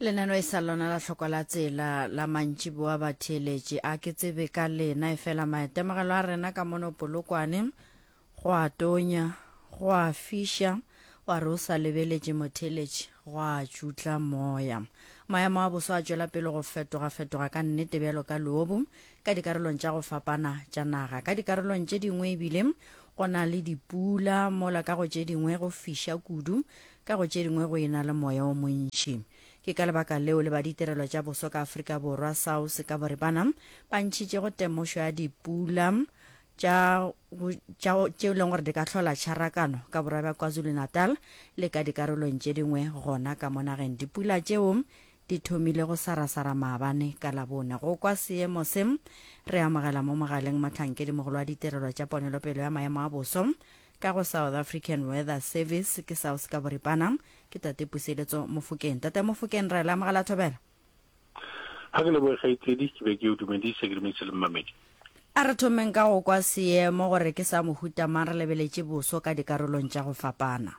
lenano e sa lona la hloko la tsela la mantši boa batheeletši a ke tsebe ka lena e fela maitemogelo a rena ka mono polokwane go a tonya go a fiša wa re o sa lebeletše motheeletši go a tšutla moya maemo a boso a tšwela pele go fetoga-fetoga ka nnete bjalo ka loobu ka dikarolong tša go fapana tša naga ka dikarolong tše dingwe ebile go na le dipula mola ka go tše dingwe go fiša kudu Ka go tše dingwe go e-na le moya o montši. Ke ka lebaka leo le ba ditirelo tša boso ka Afrika Borwa, SAWS, ka boripana ba ntšhitšego temošo ya dipula tša go tša tšeo e leng gore di ka hlola tšharakano ka borwa bja KwaZulu-Natal le ka dikarolong tše dingwe gona ka mo nageng. Dipula tšeo di thomile go sarasara maabane ka Labone. Go kwa seemo se, re amogela mo mogaleng mohlankedi mogolo wa ditirelo tša ponelopele ya maemo a boso, Ka go South African Weather Service, ke SAWS ka boripana, ke Tate Puseletso Mofokeng. Tate Mofokeng, ra e leamoga la thobela. Ga ke leboge kgaitsedi, ke be ke o dumedise, ke dumedise le mmamedi. A re thomeng ka go kwa seemo gore ke sa mohuta mang re lebeletše boso ka dikarolong tša go fapana.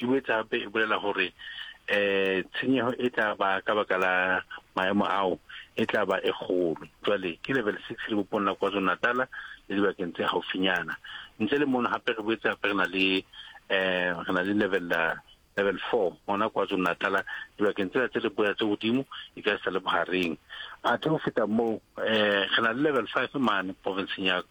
E boetse gape e bolela gore um tshenyego e tla ba ka baka la maemo ao e tla ba e kgolo. Jwale ke level six lebopong la KwaZulu-Natala le dibakeng tse gaufinyana. Ntle le mono gape re boetse gape re na le um re na le level level four gona KwaZulu-Natala dibakeng tsela tse leboya tse godimo e ka e sa le bogareng. Athe go feta moo um re na le level five mane provinseng ya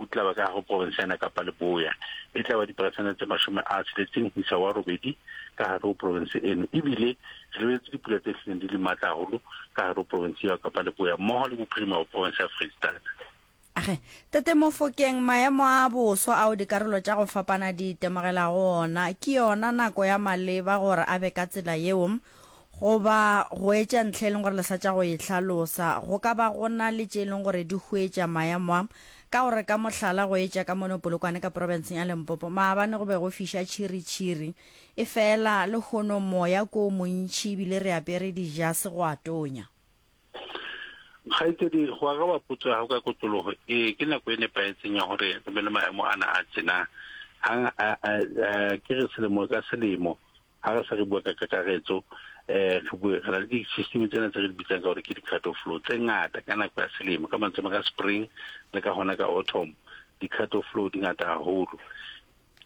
O tla ba ka go profense ya Nakapa Leboya, e tla ba diperesente tse mashome a tsheletseng ho isa wa robedi ka hare ho profense eno, e bile re lebeletse dipula tse hlileng di le matla haholo ka hare ho profense eo ya Kapa Leboya mmoho le bophirima ba profense ya Freistata. Age, Tate Mofokeng, maemo a boso ao dikarolo tša go fapana di itemogelago ona, ke yona nako ya maleba gore a be ka tsela yeo? Goba go etša ntlha e leng gore le sa tša go e hlalosa. Go ka ba go na le tše e leng gore di huetša maemo a. Ka go re ka mohlala go etša ka mono Polokwane ka profenseng ya Limpopo, maabane go be go fiša tšhiritšhiri. Efela lehono moya ke o montši e bile re apere dijase go a tonya. Kgaetšedi, go araba potso ya gago ka kotlologo, ee, ke nako e nepahetseng ya gore re be le maemo ana a tšena. Ke re selemo ka selemo. Ga re sa re bua ka kakaretso, um re bue, re na le di-system tsena tse re di bitsang ka gore ke di-cut of flow tse ngata ka nako ya selemo, ka mantswe ka spring le ka gona ka autumn di-cut of flow di ngata haholo.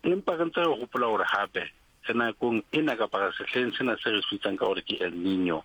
Empa re ntse re gopola gore gape re nakong ena kapa re sehleng sena se re se bitsang ka gore ke El Nino,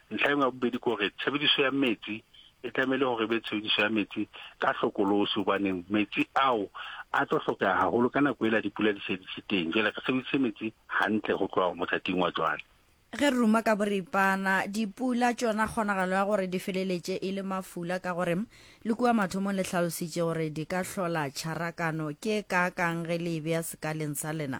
Ntlha engwe ya bobedi ke gore tshebediso ya metsi e tlamehile gore e be tshebediso ya metsi ka hlokolosi gobaneng metsi ao a tlo hlokega gagolo ka nako e la dipula di se di se teng jale re sebedise metsi gantle go tloga mothating wa jwale ge re ruma ka boripana dipula tšona kgonagalo ya gore di feleletše e le mafula ka gore le kua mathomong le hlalositše gore di ka hlola tšharakano ke kaakang ge le e bea sekaleng sa lena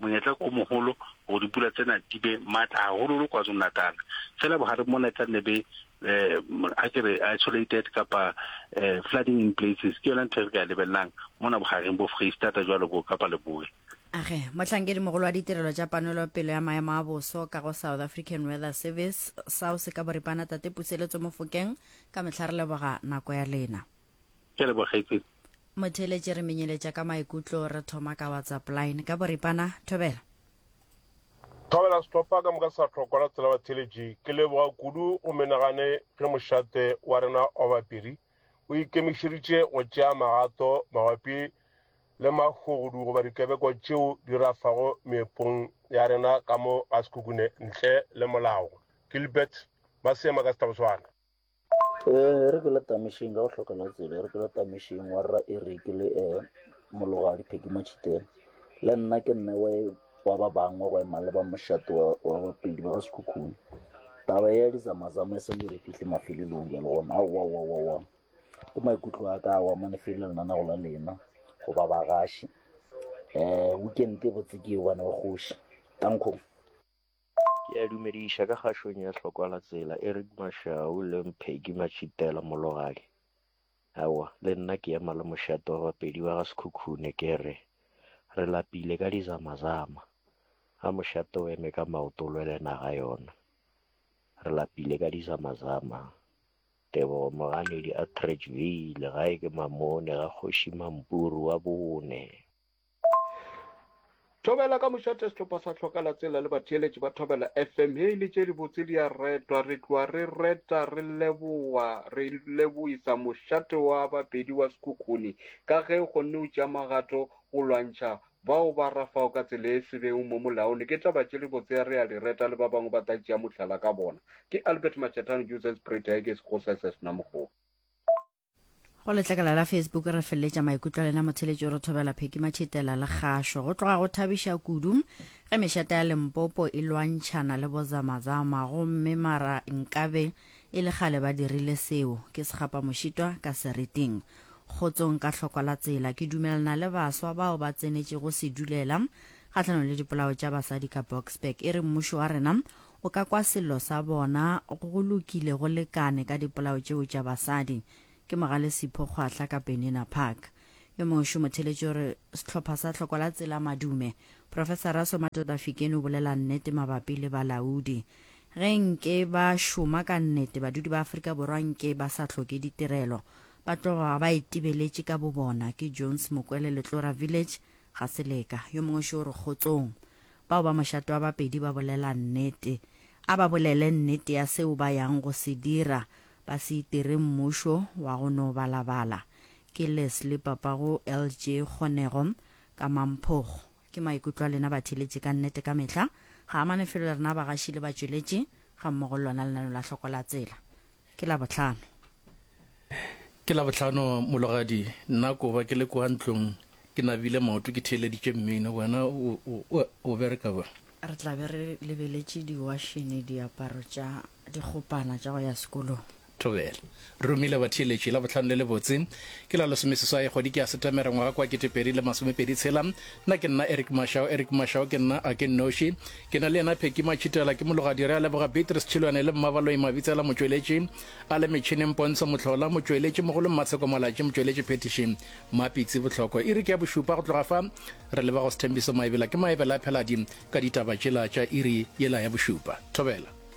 Monyetla ke o moholo hore dipula tsena di be matla haholoholo KwaZulu-Natal. Feela bohareng mona e tla nne be eh, a ke re isolated kapa eh, flooding in places. Ke yona ntho e re ka e lebellang mona bohareng bo Freistata jwalo bo Kapa Leboe. Age, mohlankedi mogolo wa ditirelo tša panelopelo ya maemo a boso ka go South African Weather Service, SAWS, ka boripana Tate Puseletso Mofokeng, ka mehla re leboga nako ya lena. ke a leboga kgaitsedi motheletše re menyeletša ka maikutlo re thoma ka whatsapp line ka boripana thobela thobela sehlopha ka moka sa tlhokwa la tsela batheletši ke leboga kudu go menagane ge mošate wa rena wa bapiri o ikemišeditše go tšea magato mabapi le mahogodu goba dikebeko tšeo di rafago meepong ya rena ka mo ga sekukune ntle le molago gilbert ba seema ka setaboswana E re ke le tamišeng ka go hloka la tsebe, e re ke le tamišeng wa rra Eric le e mologadi Peggy Machitela. Le nna ke nne wa e wa ba bangwe go ema le ba mošate wa wa bapedi ba ga Sekhukhune. Taba ya dizamazama e sa le re fihle mafelelong ya lona. Aowa wa wa wa. Ke maikutlo a ka wa mane fela lena na go la lena go ba bagaši. Weekend e botse ke e one wa kgoši. Tankong. Ke a dumediša ka kgašong ya Hlokwa-la-tsela, Eric Mashau le Mpegi Matšhitela Mologadi. Aowa, le nna ke ema le mošate wa Bapedi ba ga Sekhukhune ke re, Re lapile ka dizamazama. A mošate o eme ka maoto o lwele naga yona. Re lapile ka dizamazama. Tebogo Moganedi Attridgeville, gae ke Mamone ga Kgoši Mampuru wa bone. Thobela ka mošate sehlopha sa tlhoka la tsela le batheeletši ba Thobela FM he ile tše dibotse di a retwa re tloa re reta re leboa re leboisa mošate wa bapedi wa sekhukhuni ka ge o kgonne o tšea magato go lwantšha bao ba rafago ka tsela e sebeng mo molaone ke taba tše dibotse ya re a di reta le ba bangwe ba tla tšea mohlala ka bona ke Albert Machetano Joseph Sprita e ke se go sese sena mogolo Go letlakala la Facebook re feleletša maikutlo a lena motheletši o re thobela Pheki Matšhitela le kgašo. Go tloga go thabiša kudu ge mešata ya Limpopo e lwantšhana le bozamazama gomme mara nkabe e le kgale ba dirile seo. Ke sekgapa mošitwa ka seriting. Kgotsong ka hlokwa la tsela. Ke dumelana le baswa bao ba tsenetšego sedulela kgahlanong le dipolao tša basadi ka Boksburg. E re mmušo wa rena O ka kwa sello sa bona, Go lokile, go lekane ka dipolao tšeo tša basadi. Ke Mogale Sipho Kgwahla ka Benina Park. Yo mošo motheletši o re, Sehlopha sa Tlhoko la Tsela Madume, Profesara Somatoda Fikeni o bolela nnete mabapi le balaodi. Ge nke ba šoma ka nnete, badudi ba Afrika Borwa nke ba sa hloke ditirelo, ba tloga ba itebeletše ka bobona. Ke Jones Mokwele, Letlora Village, Gaseleka. Yo mongwe šo o re, Kgotsong. bao ba mošate wa bapedi ba bolela nnete. A ba bolele nnete ya seo ba yang go se dira, ba se itire mmušo wa go no balabala. Ke Leslie papago LJ Kgonego ka Mamphogo. Ke maikutlo a lena batheeletši ka nnete ka mehla, ga a amane felo le rena bagaši le batšweletši gammogo le lona lenaneo la Hlokola Tsela. Ke Labohlano. Ke Labohlano, mologadi. Nna koba ke le kwa ntlong ke nabile maoto ke theeleditše mmino. Wena o bereka ba? Re tla be re lebeletše diwašene, diaparo tša dikgopana tša go ya sekolong. Thobela. Re romile batheeletši Labohlano le lebotse. Ke la lesomeseswai kgwedi ke ya Setemere ngwaga kwa kete pedi le masomepedi tshela. Nna ke nna Eric Mashao. Eric Mashao ke nna a ke nnoši. Ke na le yena Phecky Matšhitela, ke mologadi, re a leboga Beatrice Tšhilwane le Mmabaloi Mabitsela motšweletši, a le metšhineng Pontsho Mohlola, motšweletši mogolo Mmatsheko Malatši, motšweletši phethiši Mapitsi Bohloko. Iri ke ya bošupa go tloga fa, re leboga go Sthembiso Maebela, ke Maebela a Pheladi ka ditaba tšela tša iri yela ya bošupa. Thobela.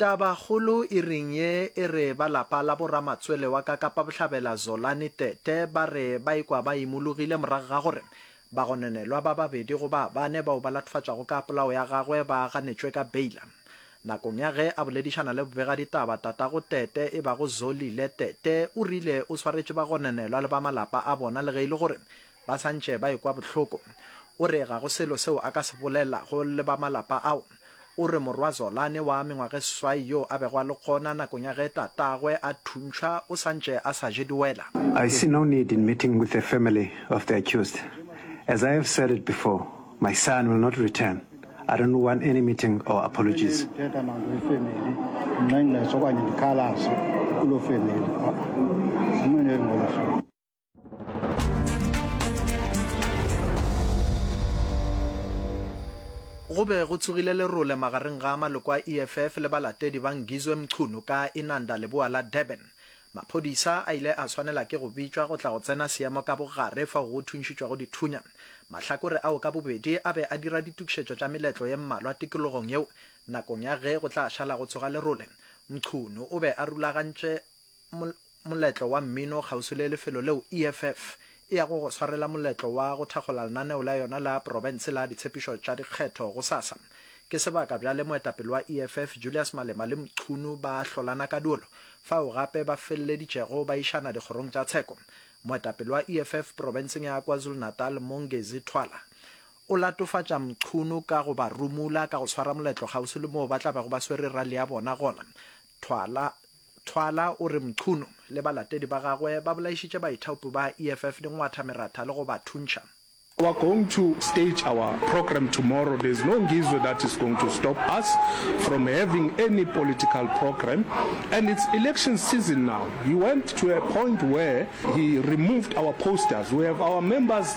Tabakgolo e reng ye e re ba lapa la boramatswele wa ka Kapa Bohlabela Zolani Tete ba re ba ikwa ba imologile morago ga gore bagononelwa ba babedi go ba bane bao ba latofatšwago ka polao ya gagwe ba ganetšwe ka beila. Nakong ya ge a boledišana le bobegaditaba, tatago Tete e bago Zolile Tete o rile o swaretše bagononelwa le ba malapa a bona le ge e le gore Ba sa ntše ba ekwa bohloko. O re ga go selo seo a ka se bolela go le ba malapa ao. O re morwa Zolani wa mengwageseswai yo a bego a le gona nakong ya ge tatagwe a thuntšhwa o sa ntše a sa je diwela. I see no need in meeting with the family of the accused. As I have said it before, my son will not return. I don't want any meeting or apologies. go be go tsogile lerole magareng ga maloko a eff le balatedi ba ngizwe mchunu ka inanda leboa la durban maphodisa a ile a swanela ke go bitšwa go tla go tsena seemo ka bogare fao go thuntšhitšwago dithunya mahlakore ao ka bobedi a be a dira ditokišetšo tša meletlo ye mmalwa tikologong yeo nakong ya ge go tla šala go tsoga lerole mchunu o be a rulagantše Moletlo wa mmino kgauswi le lefelo leo EFF e yago go swarela moletlo wa go thakgola lenaneo la yona la profense la ditshepišo tša dikgetho gosasa. Ke sebaka bjale moetapele wa EFF Julius Malema le Mchunu ba hlolana ka duolo, fao gape ba feleleditšego ba išana dikgorong tša tsheko. Moetapele wa EFF profenseng ya KwaZulu-Natal Mongezi Thwala o latofatša Mchunu ka go ba rumula ka go swara moletlo kgauswi le moo ba tla bego ba swere rally ya bona gona. Thwala Thwala o re Mchunu le balatedi ba gagwe ba bolaišitše baithaopi ba EFF dingwatha meratha le go ba thuntšha. We are going to stage our program tomorrow, there is no Ngizwe that is going to stop us from having any political program and it's election season now. He went to a point where he removed our posters, we have our members.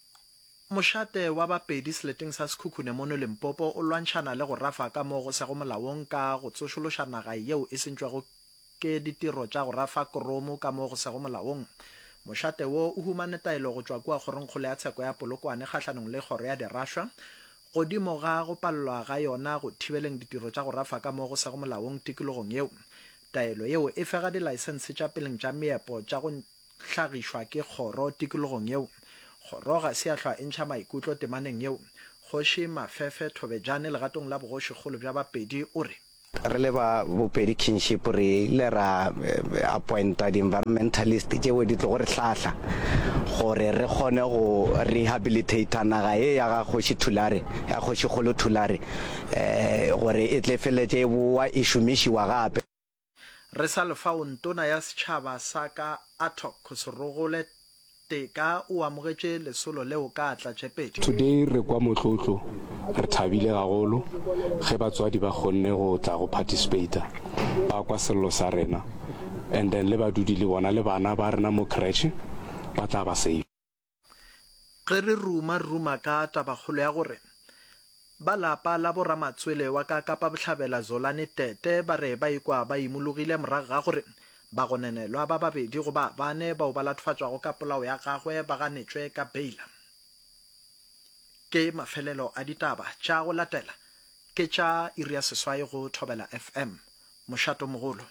Mošate wa Bapedi seleteng sa Sekhukhune mono Limpopo o lwantšhana le go rafa ka mo go sego molaong ka go tsošološa naga yeo e sentšwego ke ditiro tša go rafa koromo ka mo go sego molaong. Mošate wo o humane taelo go tšwa kua Kgorongkgolo ya Tsheko ya Polokwane kgahlanong le Kgoro ya Diraswa godimo ga go palelwa ga yona go thibeleng ditiro tša go rafa ka mo go sego molaong tikologong yeo. Taelo yeo e fega dilaesense tša peleng tša meepo tša go hlagišwa ke kgoro tikologong yeo. Kgoro ga se ya hlwa e ntšha maikutlo temaneng yeo. Kgoši Mafefe Thobejane legatong la bogošikgolo bja Bapedi o re. Re le ba Bopedi Kinship re ile ra appointa di-environmentalist tšeo di tlogo re hlahla gore re kgone go rehabilitator naga ye ya ga Kgoši Thulare, ya Kgošikgolo Thulare gore e tle e feleletše e bowa e šomišiwa gape. Re sa le fao ntona ya setšhaba sa ka Attock Serogole Teka o amogetše lesolo leo ka tlatšepedi. Today re kwa motlotlo, re thabile gagolo ge batswadi ba kgonne go tla go participator, ba kwa sello sa rena and then le badudi le bona le bana ba rena mo creche ba tla ba safe. Ge re ruma-ruma ka tabakgolo ya gore ba lapa la bo-Ramatswele wa ka Kapa Bohlabela Zolani Tete ba re ba ikwa ba imologile morago ga gore bagonenelwa ba babedi go ba bane bao ba latofatšwago ka polao ya gagwe ba ganetšwe ka beila. Ke mafelelo a ditaba tša go latela ke tša iri ya seswai go Thobela FM. Mošatomogolo.